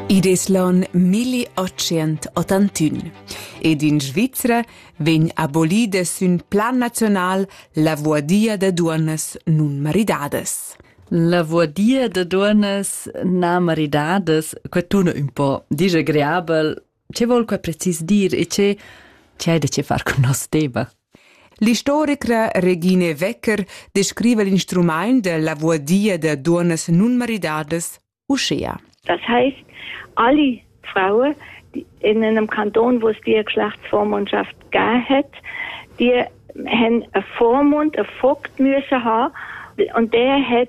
Id es l'on 1881 ed in Svizra vegn abolida sün plan nazional la vuadia da duonnas nun maridadas. La vuadia da duonnas na maridadas, que tuna ün po disagreabel, Che vol quai precis dir e che c'è da che far cun nos tema? L'istorica Regine Wecker descrive l'instrument de la voadia de duonas nunmaridadas uschea. Das heißt, alle Frauen in einem Kanton, wo es die Geschlechtsvormundschaft gegeben hat, die haben einen Vormund, einen Vogt müssen haben und der hat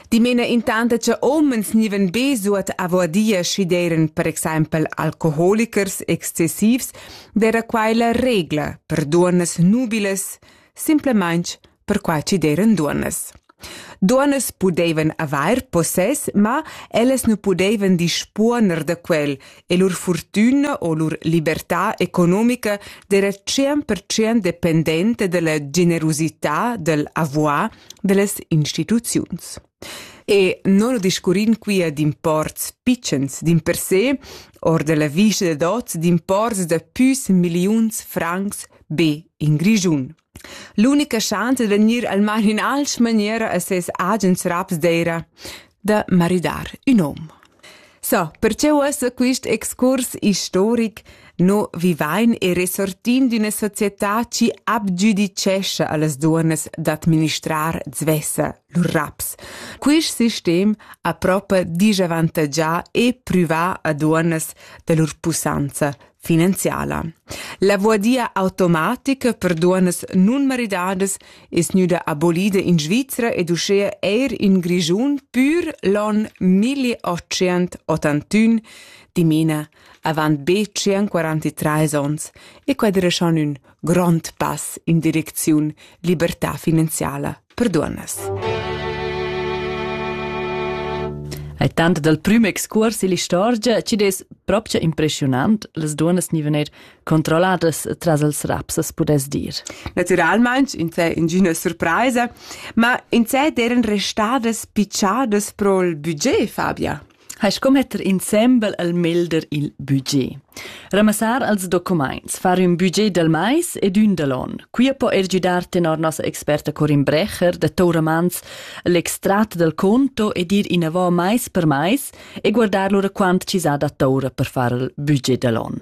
Dimena intant che omens niven be suot avoadia schi d'eran per exempel alcoholichers excessivs, d'era quai la regla per duonnas nubilas, simplamaing per quai chi d'eran duonnas. Duonnas pudevan avair possess, ma ellas nu pudevan dispuoner da quel e lur fortüna o lur libertà economica d'era 100% dependente della generosità del avoir dallas instituziuns. E non discurrin quia d'imports pitschens d'in per se, or della vista de dots d'imports da püs milliuns francs be in Grischun. L'unica chance de venir al mar in alch maniera a ses agens raps d'eira da maridar ün hom. So, perche uossa quist excurs istoric no vivain e resortin d'üna società chi abgiudicescha a las duonnas d'administrar svessa lur raps. Quist sistem ha propa disavantagià e prüvà a duonnas da lur pussanza finanziala. La voadia automatica per duonas nunmaridadas es gnüda abolida in Svizra ed uschea eir in Grischun pür l'on 1881, dimena avant be 143 ons, e quadreschan ün grond pass in direcziun libertà finanziala. per duonnas. Ai tanto dal prüm excurs ill'istorgia chi dess propcha impressionant las duonnas ni vener controlladas tras els raps as pudess dir. Naturalmaing insè ingüna surpraisa, ma insè d'eran restadas picciadas pro'l budget, Fabia? hai sco metter insembel al melder il budget. Ramassar als documents, far ün budget dal mais ed ün dal on. Qui po er giudar tenor nossa experta Corin Brecher da Tauramans l'extrat dal conto ed ir inavò mais per mais e guardar lura quant ci sa da taura per far il budget dall'on.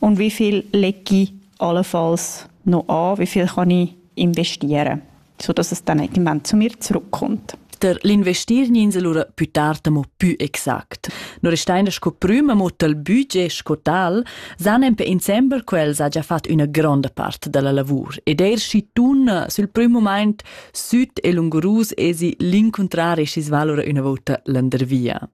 Und wie viel lege ich allenfalls noch an? Wie viel kann ich investieren? Sodass es dann irgendwann zu mir zurückkommt. Der l'investierninsel ora più tard mo più exact. No restein sco prüma mo tal budget sco tal, san en pe in sember quels ha già fatto una grande parte della lavor ed er si tun sul prüm moment süd e lungurus esi l'incontrare scis valora una volta landervia.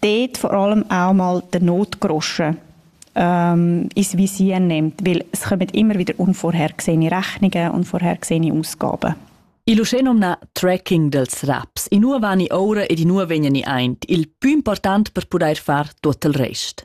dort vor allem auch mal der Notgroschen ähm, ins Visier nimmt, weil es kommen immer wieder unvorhergesehene Rechnungen, unvorhergesehene Ausgaben. Il uschenom na tracking dels raps, in ua vani oura ed in ua vegnani aint, il più important per pudair far tuot il rest.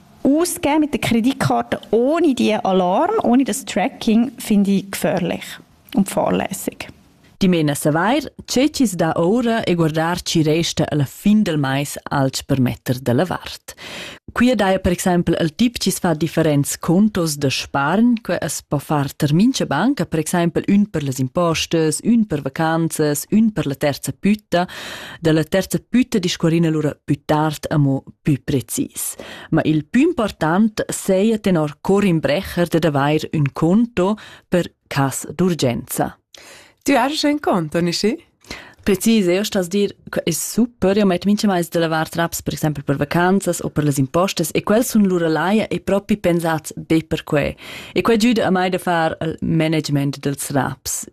Ausgeben mit der Kreditkarte ohne die Alarm, ohne das Tracking, finde ich gefährlich und fahrlässig. Dimena savair, che chi's dà oura e guardar chi resta alla fin del mais alch per metter da la vart. Qui daja per exempel il tip chi's fa differents contos da spargn, que es po far ter mincha banca, per exempel ün per las impostas, ün per vacanzas, ün per la terza pütta, da la terza pütta discorrina lura püt tard amo pü precis. Ma il pü important seia tenor Corin Brecher dad avair ün conto per cas d'urgenza. Tu hast ein Konto, nicht wahr? Precis, io stas dir, è super, io metto minchemais da lavar traps, per esempio per vacanzas o per las impostas, e quels sun lura laia e propi pensats be per que. E que giüda a mai da far il management dels raps.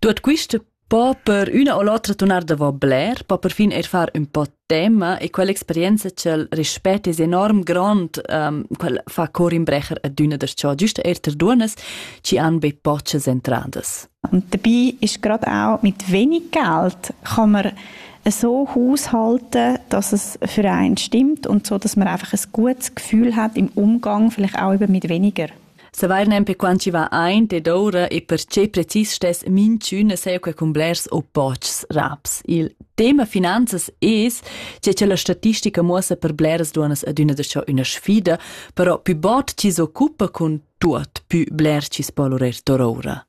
Tuot quist po per üna o l'otra tunar davo bler, po perfin eir far ün po tema e quell'experienza ch'el rispett es enorm grond, um, quel fa cor in brecher adüna darcheu giüst eir ter duonnas chi han be pochas entradas. Und dabei ist gerade auch mit wenig Geld kann man so haushalten, dass es für einen stimmt und so, dass man einfach ein gutes Gefühl hat im Umgang, vielleicht auch eben mit weniger. Savair nempe quant chi va aint ed oura e perche precis stess minchün seia que cun blers o pochs raps. Il tema finanzas es che cha la statistica muossa per bleras duonnas adüna da cho üna sfida, però pü bod chi s'occupa cun tuot, pü bler chi's po lorer toroura.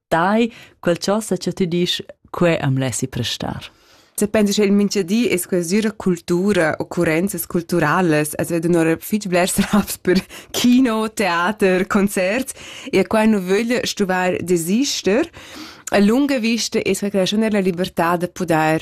tai quel ciò sa cha tü disch, que am lessi prestar. Se pensi che il minchadi es quasüra cultura, occurrenzas culturalas, as vedo un'ora fich blers raps per kino, theater, concert, e qua nu vögl stuvar desister. A lunga vista es quai la raschun della libertà da pudair